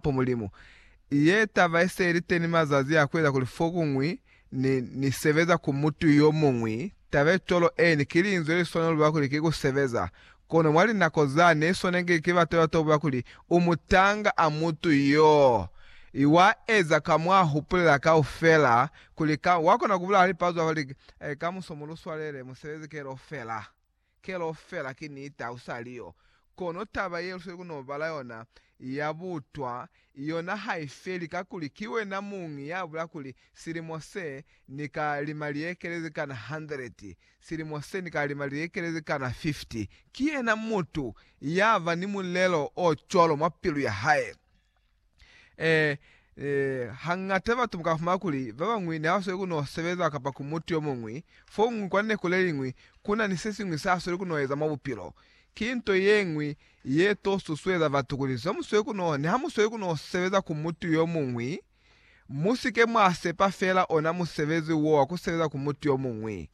ku Mulimu. Ye taba i se ili teni mazazi a kueza kuli fokuñwi ni, ni sebeza ku mutu yomuñwi, taba ye cwalo, eeni, ki linzwi le swanelo lwa kuli ki ku sebeza. Kono mwa linako zani, swanengi ki batu ba tobuka kuli, U mutanga a mutu yoo. I wa eza ka mwa hupulela kaufela, kuli ka, wa kona ku bulala lipazu a fa, li, Kamuso mu lu swalele, mu sebeze kelofela. Kelo fela ki niti ha u sa li yo. Kono taba ye lusweli ku n'o bala yona ya butwa, yona ha i feli kakuli ki wena muñi ya bula kuli, Silimo se, ni ka lima liekele ze kana handeleti. Silimo se, ni ka lima liekele ze kana fifti. Ki yena mutu ya ba ni mulelo o cwalo mwa pilu ya hae. Ee, ee, hañata batu buka fumana kuli babañwi ne ba sweli ku no sebeza kapa ku mutu yo muñwi foñwi kwa neku le liñwi ku na ni se siñwi sa sweli ku no eza mwa bupilo. Ki nto ye ñwi ye to susueza batu kuli zwa mu sweli ku no, niha mu sweli ku no sebeza ku mutu yo muñwi, mu si ke mwa sepa fela ona musebezi wo wa ku sebeza ku mutu yo muñwi.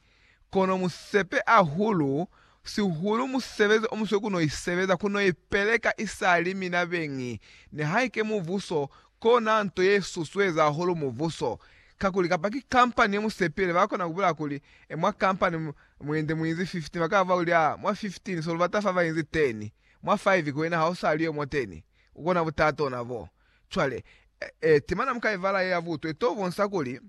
Kono mu sepe ahulu, sihulu musebezi o muswe ku no i sebeza, ku no i peleka isali mina beñi. Nihaike mubuso, kona nto ye susueza hahulu mubuso. Kakuli, kapa ki kampani ye mu sepile, ba kona ku bulaya kuli, E, mwa kampani mu inzi, mu inzi 15, ba ka ba kuli, A, mwa 15, so lu bata fa ba inzi 10. Mwa 5, ki wena ha u sa li yo mwa 10. U kona butata ona bo. Cwale, e, e, timana mu ka i bala ye ya butwe, to bonsa kuli,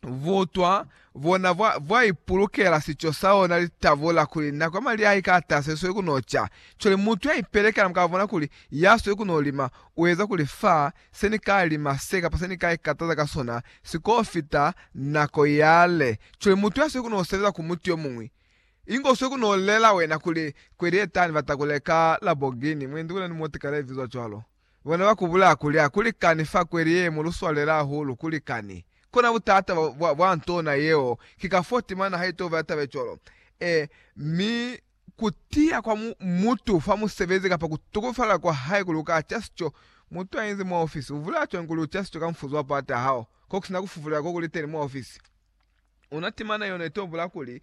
butwa bona bwa, bwa ipulukela sico sa ona li tabula kuli nako ya mali a i ka tasa i sweli ku no ca. Cwale mutu ya ipelekela mu ka bona kuli ya sweli ku no lima u eza kuli fa, se ni ka lima se kapa se ni ka ikataza ka sona si ko fita nako yale. Cwale mutu ya sweli ku no sebeza ku mutu yo muñwi, inge u sweli ku no lela wena kuli, Kweli ye tani ba ta ku leka Laborghini, mwendi wena ni moti kale, i bizwa cwalo. Bona ba kubula kuli, Ha ku likani fa kweli ye, mu lu swalela hahulu. Ku likani. Kona butata bwa, bwa, bwa ntona yeo, ki ka fo timana ha itoba ya tabe cwalo. E, mi, ku tiya kwa mu, mutu fa musebezi kapa ku tukufala kwa hae kuli u ka ca sico, mutu a inzi mwa ofisi, u vula cwañi kuli u ca sico ka mfuzo wa pata hao, ko ku sina ku fufulela ko ku li teni mwa ofisi? Ona timana yeo ne tobula kuli,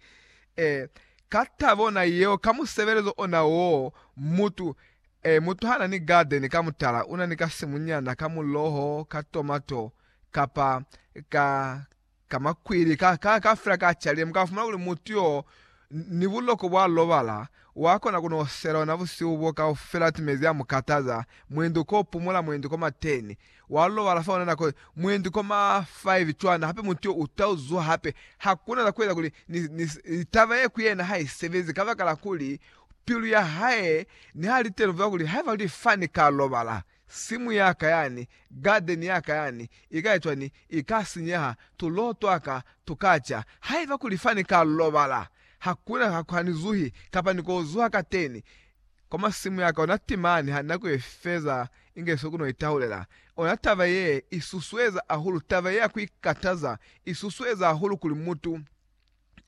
E, ka taba ona yeo, ka musebelezo ona woo, mutu, e, mutu ha na ni gadeni ka mutala, una ni ka simunyana ka muloho, ka tomato, kapa ka, ka makwili, ka, ka, ka fela ka chalile, mu ka fumana kuli mutu yo, ni buloko bwa lobala, wa kona ku no sela ona busihu bo kaufela timezi a mu kataza, mwendi ko pumula, mwendi ko mateni. Wa lobala fa ona nako mwendi kwa ma 5 cwana, hape mutu yo u ta uzuha hape. Hakuna za kueza kuli ni, ni, ni taba ye ku yena ha i sebezi, kabakala kuli pilu ya hae niha li teni kuziba kuli haiba luli fani ka lobala, simu ya ka yani, garden ya ka yani, i ka ecwa ni, i ka sinyeha, tuloho twa ka tu ka ca. Haiba kuli fani ka lobala, hakuna, ha, ha ni zuhi, kapa ni ko zuha kateni. kwa masimu yaka ona timani ha nako ye feza inge soko no itahulela ona taba ye i susueza ahulu taba ye ya ku ikataza i susueza ahulu kuli mutu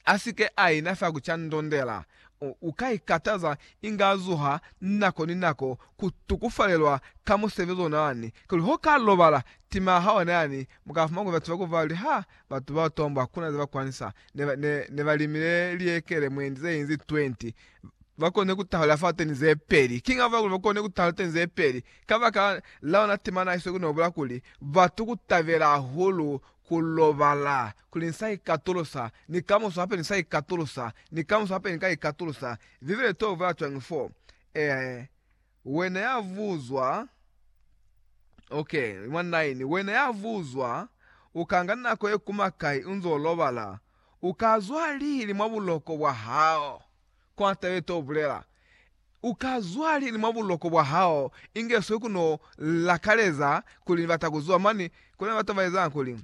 a si ke a ina fa ku ca ndondela u, u ka ikataza inga zuha nako ni nako ku tukufalelwa ka musebezi ona yani kuli ho ka lobala tima ha ona yani mu ka fumana kuli batu ba ku fa li ha batu bao tombo hakuna ze ba kwanisa ne, ne, ne ba limile liekele mwendi ze inzi 20 ba kone ku tahula fa teni ze peli. Kiñi ha bahulu ba kone ku tahula teni ze peli? Kabakala la ona tema na iso ku no bula kuli, Batu ku tabela hahulu ku lobala, kuli ni sa ikatulusa, ni kamuso hape ni sa ikatulusa, ni kamuso hape ni ka ikatulusa. Bibele i to bula cwañi fo? Ee, wena ya buzwa, okay, mwa 9, wena ya buzwa, u ka nga nako ye kuma kai u nzo lobala, U ka zwa lili mwa buloko bwa hao? Kwa tabe to bulela, U ka zwa lili mwa buloko bwa hao? Inge swe ku no lakaleza kuli ni bata ku zwa mani. Ku na ni batu ba ezanga kuli,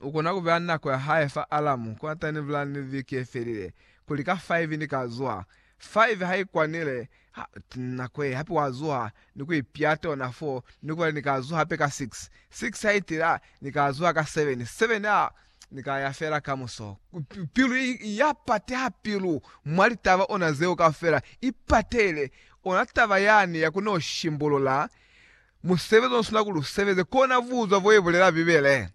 U kona ku beya nako ya hae fa alamu kotani ni bulela ni viki ye felile kuli ka faivi ni ka zwa. Faivi ha i kwanile, ha nako ye, hape wa zwa ni ku ipiata ona foo ni ku bala, Ni ka zwa hape ka six. Six ha i tila, Ni ka zwa ka seven. Seven, ha Ni ka ya fela kamuso. Pilu ya pateha pilu mwa litaba ona zeo kaufela. I patehile ona taba yani ya ku no shimbulula musebezi ono sina kuli u sebeze. Ko na buzwa bo ye bulela Bibele.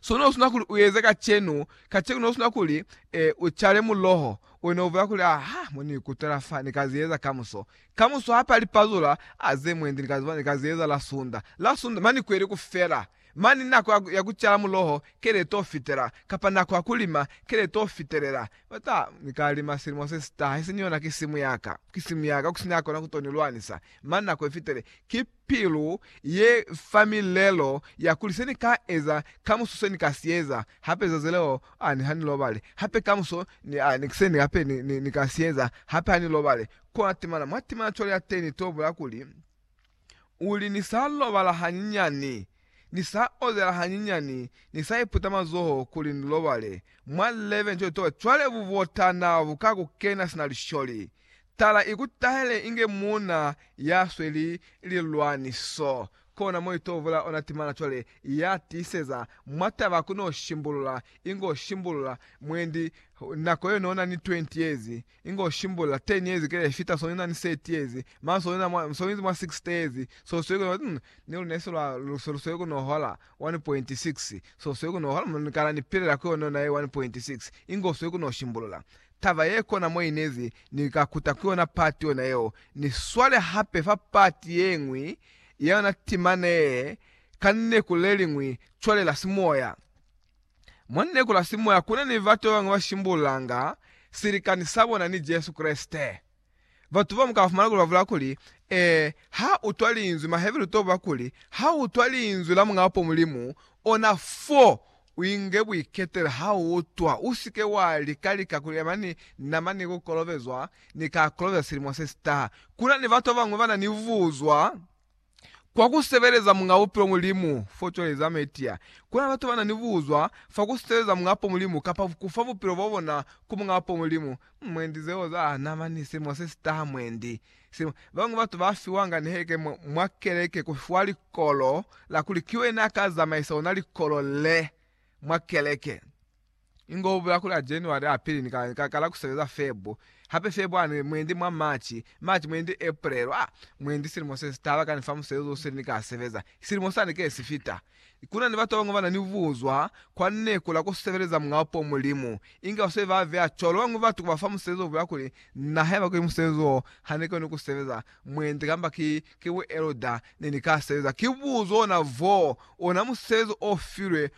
So no sina kuli u eze kacenu, kacenu no sina kuli, e, u cale muloho, we no bulela kuli, Ah, ha mo ni ikutwela fa, ni ka zi eza kamuso. Kamuso ha pali pazula, ah, ze mwendi ni ka zi bona, ni ka zi eza la Sunda. La Sunda, mani kweli kufela. Mane nako ya, ya kucala muloho kele to fitela, kapa nako ya kulima kele to fitelela. Ba ta, Ni ka lima silimo se si taha, isiñi yona ki simu ya ka. Ki simu ya ka, ku si na ya kona ku to ni lwanisa. Mane nako ye fitile. Ki pilu ye fa milelo ya kuli, Se ni ka eza, kamuso se ni ka si eza. Hape zazi leo, a ni ha ni lobale. Hape kamuso, ni, a ni, se ni, hape ni, ni, ni ka si eza. Hape ha ni lobale. Kona temana, mwa temana cwale ya teni to bula kuli, U li, Ni sa lobala hanyinyani, ni sa ozela hanyinyani, ni sa iputa mazoho kuli ni lobale. Mwa 11 cwale, towa cwale bubotana bu ka ku kena sina lisholi. Tala i ku tahele inge muuna ya sweli lilwaniso. Kona mo i t'o vula ona timana cwale, ya tiiseza mwa taba ku n'o shimbulula, inge u shimbulula mwendi nako yo n'o na ni 20 years, Inge u shimbula 10 years kile fita so nina ni 30 years mara so nina mwa so inzi mwa 60 years so sweli kuno umm ni lune se lwa se lu sweli kuno hola 1.6 so sweli kuno hola ni kala ni pilela ku yona yona ye 1.6 inge u sweli kuno shimbulula taba ye kona mo inezi ni ka kuta ku yona part yona yeo ni swale hape fa part yengwi ya yona timana ye ka lineku leliñwi cwale la simoya. Mwa Nikolasi moya ku na ni batu ba bañwi ba shimbululanga silikani sa bona ni Jesu Kreste. Batu ba bamwi ka ba fumana kuli ba bula kuli, Ee, ha utwa linzwi, Maheberu to ba kuli, ha utwa linzwi la Muñaa po Mulimu, ona fo, u inge buiketelo ha u utwa, u si ke wa lika lika ku yema ni nama ni ku kolobezwa, Ni ka kolobeza silimo se si taha. Ku na ni batu ba bañwi ba na ni buzwa. Kwa ku sebeleza Muñ'a Bupilo Mulimu fo cwale za Metia, ku na batu ba na ni buzwa fa ku sebeleza Muñ'a Po Mulimu kapa ku fa bupilo bwa bona ku Muñ'a Po Mulimu. Mwendi zeo za na ba ni silimo se si taha mwendi. Silimo. Ba bañwi batu ba fiwanga ni heke mwa, mwa keleke ku fiwa likolo la kuli ki wena a ka zamaisa ona likolo le mwa keleke. Ingo ubuya ku la January apili ni ka, ni ka kala ku sebeza Feb. Hape Feb ani mwendi mwa March, March mwendi April, ah, mwendi silimo se si taba kani fa musebezi wo seli ni ka sebeza. Silimo sani ke si fita. Kuna ni batu babañwi bana ni buzwa kwa neku la ku sebeleza Muñ'a Upo, Mulimu. Inge basweli ba beya cwalo babañwi batu ku ba fa musebezi ubuya kuli, Na haiba kuli musebezi wo ha ni koni ku sebeza, mwendi kamba ki, ki bu elder, ne ni ka sebeza. Ki buzo ona voo, ona musebezi o filwe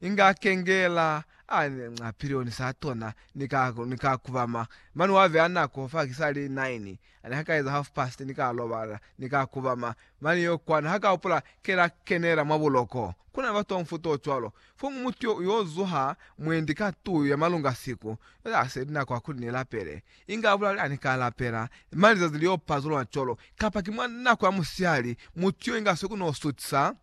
Inga kengela a nca pilioni sa tona ni ka, ni ka kubama. Mani wa beya nako fa kisali nine, ani ha ka eza half past ni ka lobala, ni ka kubama. Mani yo kwani ha ka hupula ke la kenela mwa buloko. Ku na ni batu ba mufuta o cwalo. Fomu mutu yo, yo zuha mwendi ka tuyu ya malunga siku yo ya seli nako ya kuli ni lapele. Inga a bulale, Ani ka lapela, mani lizazi li yo pazulula cwalo. Kapa ki mwa nako ya musihali, mutu yo inga swe ku no sutisa.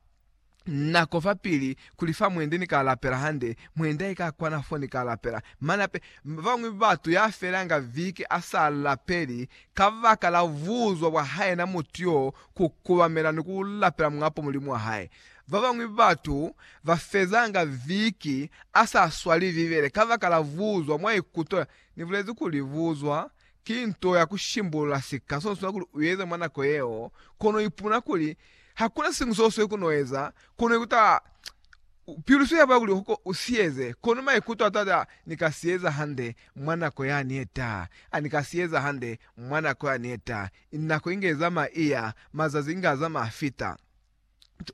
nako fapili kuli fa mwende ni ka lapela hande, mwenda ika kwana fo ni ka lapela. Mane hape, babañwi batu ya felanga viki a sa lapeli kabaka la buzwa bwa hae na mutu yo ku kubamela ni ku lapela mwapo mulimu wa hae. Babañwi batu ba fezanga viki a sa swali Bibele kabaka la buzwa mwa ikuto. Ni bulezi kuli buzwa Ki nto ya ku shimbulula sika so swa kuli u eze mwa nako yeo, kono u ipumuna kuli hakuna siñwi so swe ku no eza, kono u ikuta pilu swe ya bula kuli ko u si eze, kono maikuto a to ata, Ni ka si eza hande mwa nako yani ye taha, a ni ka si eza hande mwa nako yani ye taha. Nako inge izama iya, mazazi inge azama afita.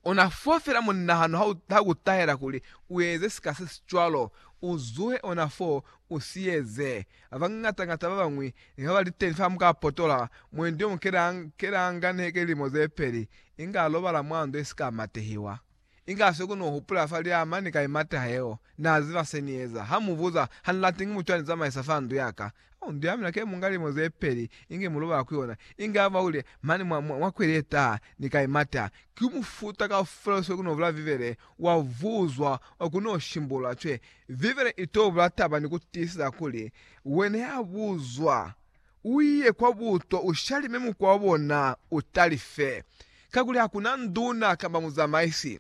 Ona fo fela munahano ha u, ha ku tahela kuli u eze sika se si cwalo, u zuhe ona fo, u si eze. Ba bañata-ñata ba bañwi ne ba ba li teñi fa muka potola, mwendi yo mukelanga, kelanga neke lilimo ze peli, inga lobala mwa ndo ye si ka matehiwa. Inga se ku no hupula fa liama ni ka i mateha yeo. Na ziba se ni eza. Ha mu buza, Ha ni lati ki mutu ya ni zamaisa fa ndu ya ka. Mbi ya mina ke munga lilimo ze peli, inge mu loba ku yona. Inge ha mwa wile mane mwa, mwa, mwa kweli ye taha, ni ka imata. Ki mufuta kaufela usile ku no bula Bibele, wa vuzwa, wa ku no shimbulula cwe. Bibele i to bula taba ni ku tiiseza kuli, Wena ya buzwa, u ye kwa buto, u shalime mukwa wa bona, u talife. Kakuli hakuna nduna kamba muzamaisi.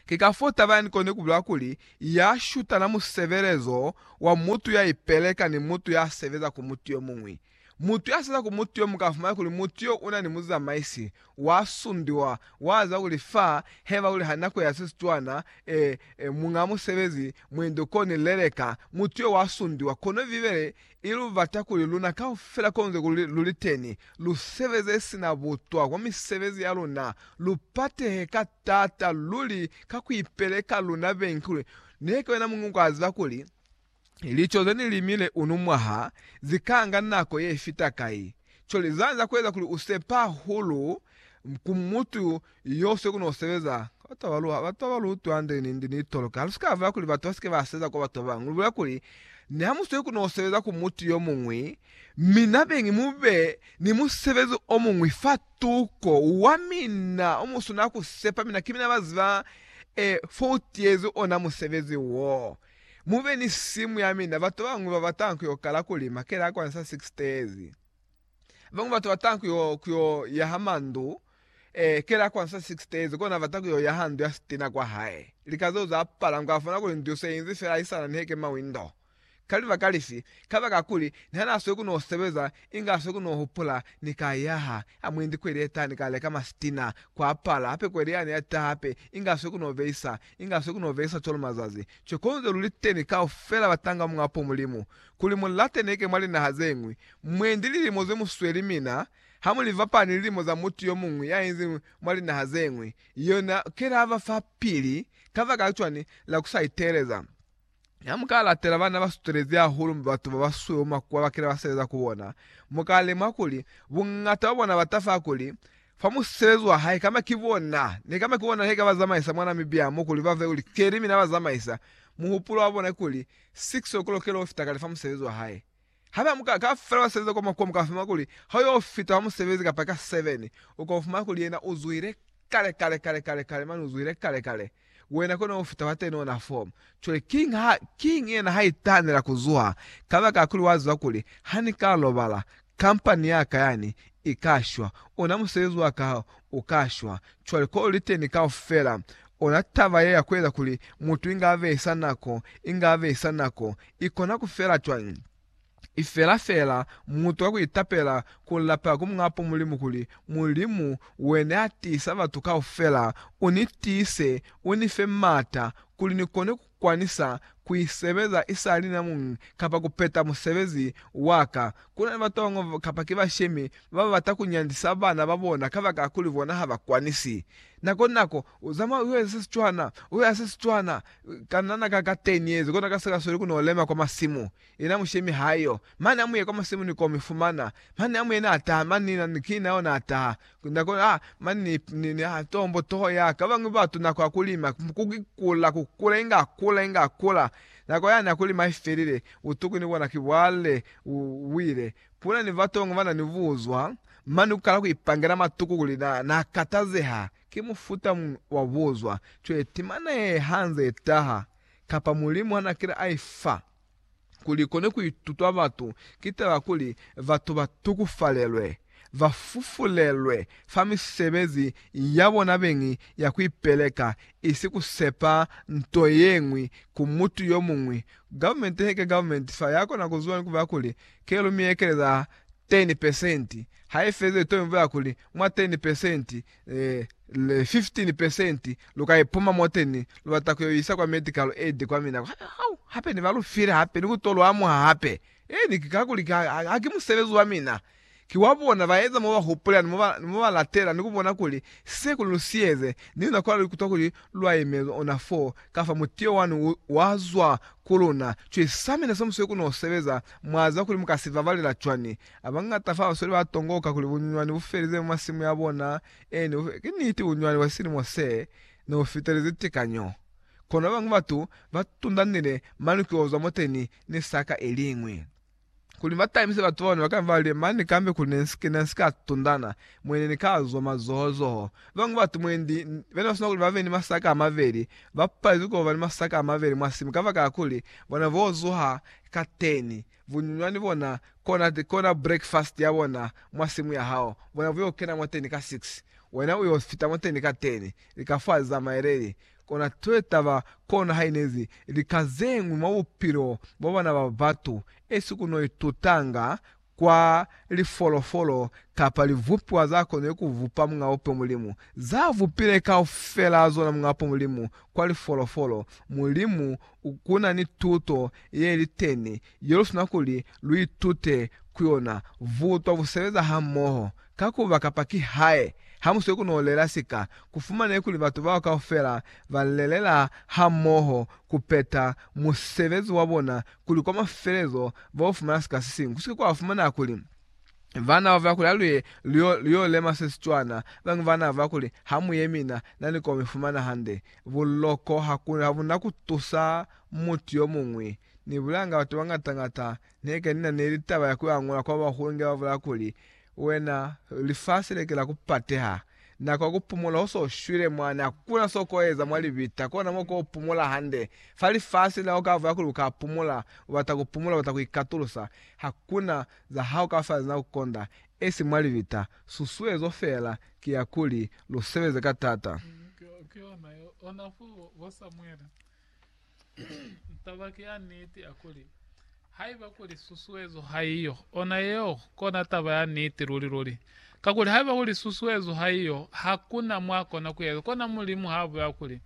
Ki ka fo taba yani koni kubila kuli ya shutana mu sebelezo wa mutu ya ipeleka ni mutu ya sebeza ku mutu yo muñwi. Mutu ya sebeza ku mutu yo muñwi ka fumana kuli mutu yo una ni muzamaisi, wa sundiwa, wa ziba kuli fa heba kuli ha nako ya se si cwana, e, e, muña musebezi, mwendi u koni leleka, mutu yo wa sundiwa. Kono Bibele I lu bata kuli luna kaufela konze kuli lu li teni, lu sebeze sina butwa kwa misebezi ya luna, lu patehe ka taata luli ka ku ipeleka luna bengi kuli ne ki wena muñwi kwa ziba kuli lico ze ni limile uno mwaha zi ka nga nako ye fita kai. Cwale zanza ku eza kuli u sepa hahulu ku mutu Iyo se ku no sebeza. Batu ba lu, batu ba lu utwa nde ni, nde ni toloka. Lu si ka vula kuli batu ba si ke ba seza kwa batu ba bañwi. Lu bulela kuli, Ni ha mu se ku no sebeza ku mutu yo muñwi, mi na beñi mu be ni musebezi o muñwi fa tuko wa mina o mu swanela ku sepa mina, ki mina ba ziba, e, fo u tiyezi ona musebezi wo. Mu be ni simu ya mina. Batu ba bañwi ba bata ku yo kala kuli, Makele a kwa ni sa si ki sitezi. Babañwi batu bata ku yo, ku yo yaha mandu, eh, kela kwa nsa 6 days, kona bata ku yo yaha ndu ya sitina kwa hae. Lika zeo za pala, nku afona kuli ndu se inzi fela i sana niheke mawindo. Ka libaka lifi? Kabaka kuli, ni ha na sweli ku no sebeza, inge a sweli ku no hupula, Ni ka yaha, ha mu inzi kweli ye taha, ni ka leka masitina. Kwa pala, hape kweli yani ya taha hape, inge a sweli ku no behisa, inge a sweli ku no behisa cwalo mazazi. Cwale konze lu li teni kaufela batanga Muñ'a po Mulimu, kuli mu lateneke mwa linaha ze ñwi, mwendi lilimo ze mu sweli mina ha mu li fapana ni lilimo za mutu yo muñwi ya inzi mwa linaha ze ñwi, yona ke la ba fa pili. Kabakala cwani? La ku sa iteeleza. Ha mu ka latela bana ba sutelezi hahulu ni batu ba ba sweu makuwa bakile ba sebeza ku bona, mu ka lemuha kuli buñata bwa bona ba tafa kuli, Fa mu sebezi wa hae, kamba ki bona, ne kamba ki bona he ka ba zamaisa mwa Namibia mo kuli ba fe kuli keli mina ba zamaisa, muhupulo wa bona ki kuli, 6 o'clock leo fita kale fa musebezi wa hae. Hape amuka ka fela wa sebeza kwa makuwa muka fumana kuli ha uyo fita fa musebezi kapa ka 7 uka fumana kuli yena u zuhile kale kale kale kale kale mane u zuhile kale kale wena kona u fita fa 10 ona 4 cwale king ha king yena ha itanela ku zuha kabaka ya kuli wa ziba kuli ha ni ka lobala Kampani ya ka yani i ka shwa, ona musebezi wa ka u ka shwa. Cwale ko li teni kaufela, ona taba ye ya ku eza kuli mutu inge a behisa nako, inge a behisa nako. I kona ku fela cwañi? I fela feela mutu ka ku itapela, ku lapela ku Muñaa po Mulimu kuli, Mulimu, Wene ya tiisa batu kaufela, u ni tiise, u ni fe maata, kuli ni kone ku kwanisa ku i sebeza i sa li na muñi kapa ku peta musebezi wa ka. Ku na ni batongo kapa ki bashemi ba ba bata ku nyandisa bana ba bona kabakala kuli bona ha ba kwanisi. Nako ni nako, u zamaya u yo eza se si cwana, u yo ya se si cwana. Kanana ka ka 10 yezi, kono ka si ka sweli ku no lema kwa masimu. Yena mushemi haiyo, mane amuye kwa musimu ni komi fumana, mane amuye na taha mani ni na ki nao na taha nako a mani ni, ni, ni a tombo toho ya ka bangwi batu nako ya kulima kuki kula kukula inga kula inga kula nako yani ya kulima ifelile utuku ni bona ki bwale u wile kula ni batongo bana ni buzwa mani ukala ku ipangela matuku kuli na na katazeha ki mufuta mun wa buzwa cweti mane hanze taha kapa mulimu hana kile aifa. kuli kone kuitutwa batu ki taba kuli batu ba tukufalelwe, ba fufulelwe fa misebezi ya bona beñi ya kuipeleka, isi kusepa nto yeñwi ku mutu yomuñwi. Government he ke government fa ya kona ku zuba ni kubulela kuli ke lu mi ekeleza 10 percent, ha i fezile to mi bulela kuli mwa 10 percent le 15 percent luka ipuma moteni lubata kuyo isa kwa medical aid kwa mina kwa hau hape ni balufile hape ni kuto luamuha hape ee ni kakuli ki haki musebezi wa mina ki wa bona baeza moba hupulela ni moba ni moba latela ni kubona kuli se kuli lu sieze ni luna kwa lu kutwa kuli lwa imezwa ona for kafa mutio wani u wa zwa ku luna cwisa mina se musweu ku no sebeza mwa ziba kuli muka si babalela cwani Abañata fa basweli ba tongoka kuli bunyunywani bu felize mwa masimu ya bona. Ee, ne bu felize. Ki niti, bunyunywani bwa silimo se ne bu fitelezi tikanyo. Kono babañwi batu ba tundanile maluki ozwa moteni ni saka iliñwi. Kuli ba tabize batu babone, ba ka ba li, Mane kambe kuli ne nsi, ne nsi ka tundana, mwe ne ni ka zwa mazoho-zoho. Babañwi batu mwendi, be ne ba sina kuli ba be ni masaka a mabeli, ba palezwi ku ba ni masaka a mabeli mwa simu kabakala kuli bona bo zuha kateni. Vunyunywani bona, kona, kona breakfast ya bona mwa simu ya hao, bona bu yo kena mwateni ka six, wena u yo fita mwateni ka ten, lika fa za maeleli. Kona twe taba, kono ha inezi lika zeñwi mwa bupilo bwa bana ba batu, esi ku no itutanga kwa lifolofolo kapa livupiwa za konile ku vupa Muñ'a Bupe Mulimu, za vupile kaufela zona Muñ'a Bupe Mulimu kwa lifolofolo, Mulimu ku na ni tuto ye li teñi ye lu sina kuli lu itute ku yona, Butwa bu sebeza hamoho. Ka ku ba kapa kihae, ha mu swe ku nolela sika, ku fumanehe kuli batu bao kaufela ba lelela hamoho ku peta musebezi wa bona, kuli kwa mafelezo ba yo fumana sika se siñwi. Ku si ke kwa fumaneha kuli bana ba fa kuli ha lu ye lu yo lema se si cwana, bañwi ba nava kuli ha mu ye mi na, na ni ko mi fumana hande. Buloko ha bu na ku tusa mutu yo muñwi. Ni bulanga batu ba ngata-ngata. Ne ke ni na ni litaba ya ku angula kwa bahulu inge ba bulaya kuli, Wena, lifasi le ke la ku pateha. Nako ya ku pumola u so shwile mwani, ha ku na so ko eza mwa libita, kona mo ko pumola hande. Fa lifasi la u ka bulaya kuli u ka pumola, u bata ku pumola, u bata ku ikatulusa. Ha ku na za ha u ka fa za na ku konda, esi mwa libita. Susuezo fela ki ya kuli lu sebeze ka tata. Ki ona yo ona fo bo Samuele. Taba ki ya niti ya kuli, haiba kuli susuezo haiyo, ona yeo kona taba ya niti luli-luli. Kakuli haiba kuli susuezo haiyo, hakuna mwa kona ku eza. Kona Mulimu ha bulela kuli,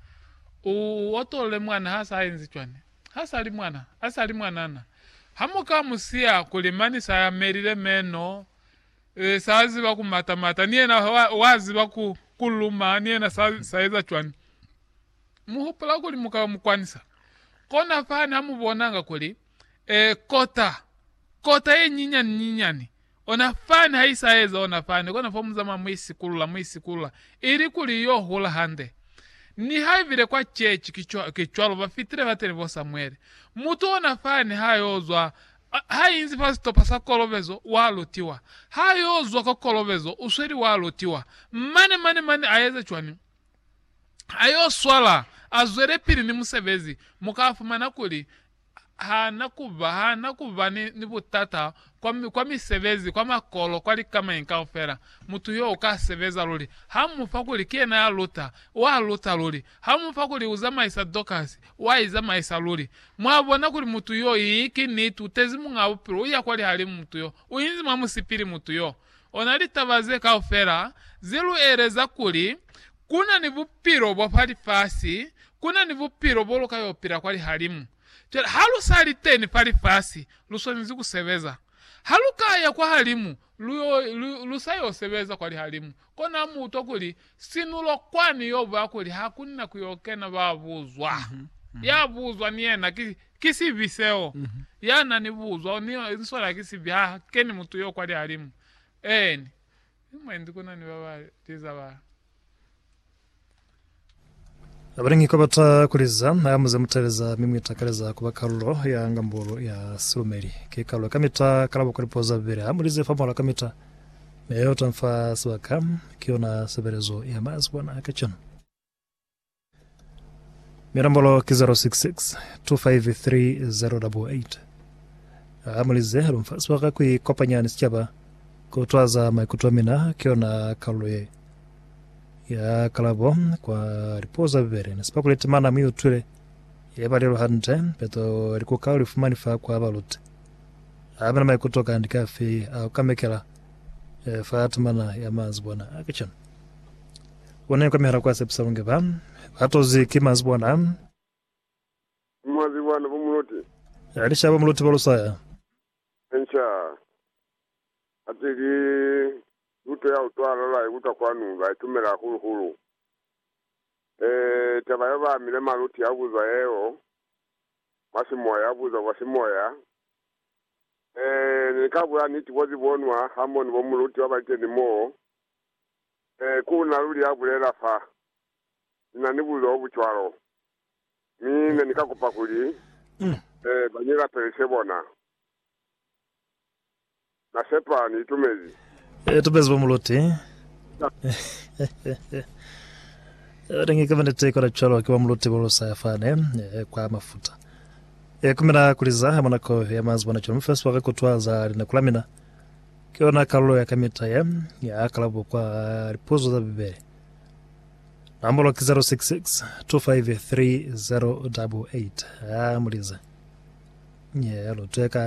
U otolole mwana ha sa enzi cwani? Ha sa li mwana, a sa li mwanana. Ha mu ka mu siya kuli mani sa yamelile meno, Ee, sa ziba ku mata mata, ni yena wa, wa ziba ku, ku luma, ni yena sa, sa eza cwani. Mu hupula kuli mu ka mu kwanisa. Kona fani ha mu bonanga kuli, ee, kota, kota ye nyinyani nyinyani, ona fani ha i sa eza ona fani, kona fo mu zamaya mu i sikulula, mu i sikulula, ili kuli yo hula hande. Niha ibile kwa ceci ki cwa, ki cwalo, ba fitile bateni bo Samuele. Mutu ona fani ha yo zwa, Ha inzi fa sitopa sa kolobezo, wa lutiwa. Ha yo zwa kwa kolobezo, u sweli wa lutiwa. Mane, mane, mane a eza cwani? A yo swala, a zwelepili ni musebezi. Mu ka fumana kuli ha na ku ba, ha na ku ba ni, ni butata kwa, kwa misebezi, kwa makolo, kwa likamañi kaufela. Mutu yo u ka sebeza luli. Ha mu fa kuli ki yena ya luta, wa luta luli. Ha mu fa kuli u zamaisa Dokasi, wa i zamaisa luli. Mwa bona kuli mutu yo, i, ki niti, u tezi Muñaa Bupilo, u ya kwa lihalimu mutu yo. U inzi mwa musipili mutu yo. Ona litaba ze kaufela ze lu eleza kuli, Ku na ni Bupilo bwa fa lifasi, ku na ni Bupilo bo lu ka yo pila kwa lihalimu. Cwale, ha lu sa liteni fa lifasi, lu swanezi ku sebeza. Ha lu ka ya kwahalimu, lu sa yo sebeza kwa lihalimu, kona mu utwa kuli sinulo kwani yo buya kuli ha ku na ku yo kena ba buzwa. Ya buzwa ni yena ki sibi seo, ya na ni buzwa ni sona ki sibi, ha keni mutu yo kwa lihalimu. Eeni. Ni mwendi ku na ni ba ba liza ba. Abaningi kwabata kuliza ha muze muteleza mi muitakaleza kuba kalulo ya ngambulu ya silumeli. Ki kalulo kamita kalabo kwa lipuzo za Bibele hamulize fa muhala kamita, mi yeo tamfa sibaka ki yona sebelezo ya mazuwana a kacenu. Milombolo ki 066 253 088. Ha mulize lumfasi wa ka ku ikopanya ni sicaba, ku twaza maikuto a mina ki yona kalulo ye ya kalabo kwa lipuo za bibele. Ne si pakule temana mu utwile ye ba lelo hande, peto li kuka li fumani fa kwa baluti. Ha mina maikuto kandi ki afi a ku kamekela fa temana ya manzibwana a kacenu? Ona yo kamihela kwa sepisa bungi ba ba tozi ki manzwi bona. Mwa ziba na bo Muloti. Ya lishaba Muloti ba Lusaya. Enca. Ate ki luto ya utwala la ikuta kwanu ba itumela hahulu hulu. Eeh taba yo ba amile Maluti ya buzwa yeo mwa simoya ya buzwa kwa simoya. Eeh ne ni ka bula niti bo zibonwa ha mo ni bo Muloti wa baliteni moo Ee, ku na luli ya bulela fa ni na ni bulilo bo bu cwalo. Mi ne ni ka kupa kuli, ee, ba ni lapelise bona. Na sepa ni itumezi. Ee, tumezi bo muluti. Ewa, ne ni kamba niti, kona cwalo, ki ba muluti bo lusa ya fani, ee, kwa mafuta. Ee, ku mina kuli za mwa nako ya mazi bona cwalo, mi fela sebaka ku twa za linako la mina. Ki yona kalulo ya kamita ye ya kalabo kwa lipuzo za Bibele. Nomolo ki 066 253 088. Ha mu lize. Ye luteka.